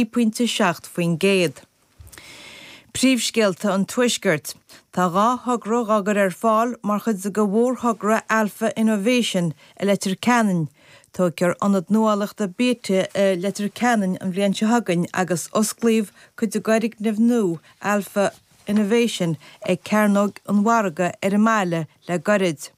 3.7%. Príomhscéalta an Tuaiscirt, Tá dhá thogra dhá gcur ar fáil mar chuid de mhórthogra Alpha Innovation i Leitir Ceanainn. Tógfar ionad nuálaíochta Beta i Leitir Ceanainn an bhliain seo chugainn agus osclaíodh cuid d'fhoirgneamh nua Alpha Innovation ag Cearnóg an Mhargaidh ar an mbaile le gairid.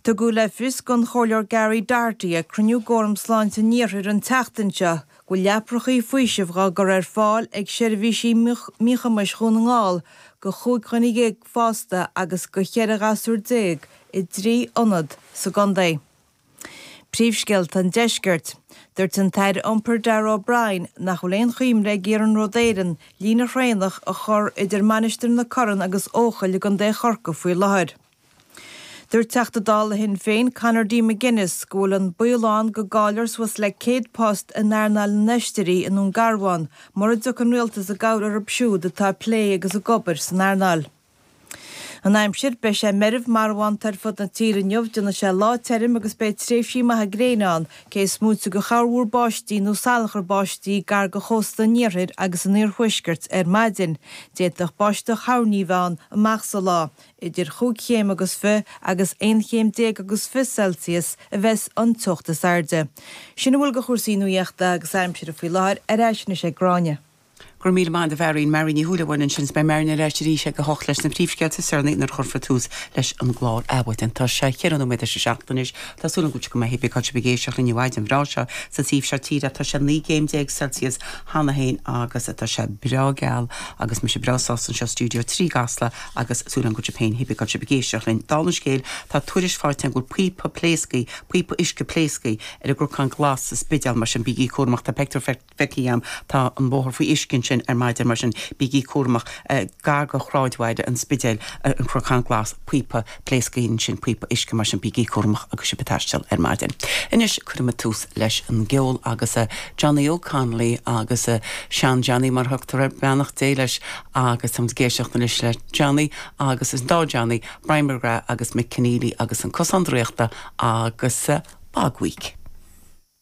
Tugadh le fios don Chomhairleoir Gary Doherty ag cruinniú d'Fhóram Sláinte an Iarthair an tseachtain seo go bhfuil leaprachaí faoisimh dhá gcur ar fáil ag seirbhísí míchumais Dhún na nGall go chúig dhuine dhéag fásta agus go cheithre ghasúr déag i dtrí ionad sa gcontae. Príomhscéalta an Deiscirt. Dúirt an tAire Iompair Darragh O'Brien nach bhfuil aon chuimhne ag Iarnród Éireann líne thraenach a chur idir Mainistir na Corann agus Eochaill i gContae Chorcaí faoi láthair. Dúirt Teachta Dála Shinn Féin Conor D. McGuinness go bhfuil an baol ann go gcaillfear suas le 100 post in earnáil na n-oisrí i nDún Garbhán mura dtiocfaidh an Rialtas i gcabhair orthu siúd atá ag plé agus ag obair san earnáil. An aimsir, Beidh sé meirbh marbhánta ar fud na tíre inniu déanfaidh sé lá tirim agus beidh tréimhsí maithe gréine ann, cé is moite go chorrmhúr báistí nó salachar báistí gar go chósta an iarthair agus an iarthuaiscirt ar maidin. D'fhéadfadh báisteach thoirní a bheith ann amach sa lá. Idir chúig chéim agus fiche agus aon chéim déag agus fiche Celsius a bheas an teocht is airde. Sin a bhfuil de chúrsaí nuaíochta agus aimsire faoi láthair, ar ais anois ag Gráinne. Go raibh míle maith agat a Mharion, Marion Ní Shúilleabháin ansin. Beidh Marion ar ais arís ag a hocht leis na príomhscéalta is deireanaí nuair a chuirfear tús leis an gclár Adhmhaidin. Tá sé cheithre nóiméad tar éis a seacht anois. Tá súil agam go bhfuil sibh go maith cibé cén áit a bhfuil sibh ag éisteacht linn an mhaidin bhreá seo sa taobh seo tíre. Tá sé naoi gcéim déag Celsius cheana féin agus tá sé breá geal agus mise breá sásta anseo i Studio 3 i gCasla agus súil agam go bhfuil sibh féin cibé cén áit a bhfuil sibh ag éisteacht linn. Dála an scéil, tá tuairisc faighte agam go bhfuil píopa pléasctha, píopa uisce pléasctha, ar an gCnocán Glas sa Spidéal, mar sin bígí cúramach. Tá peictiúr feicthe agam. Tá an bóthar faoi uisce ansin ar maidin, mar sin bígí cúramach. Gar go shráidbhaile an Spidéil, An Cnocán Glas, píopa pléasctha ansin, píopa uisce, mar sin bígí cúramach agus sibh ag taisteal ar maidin. Anois cuirfimid tús leis an gceol agus Johnny Óg Connolly agus Sean-Johnny mar a thugtar air, beannacht Dé leis, agus táimid ag éisteacht anois le Johnny agus an dá Johnny, Brian McGrath agus Mick Conneely agus An Cosán Draíochta agus Bog Week.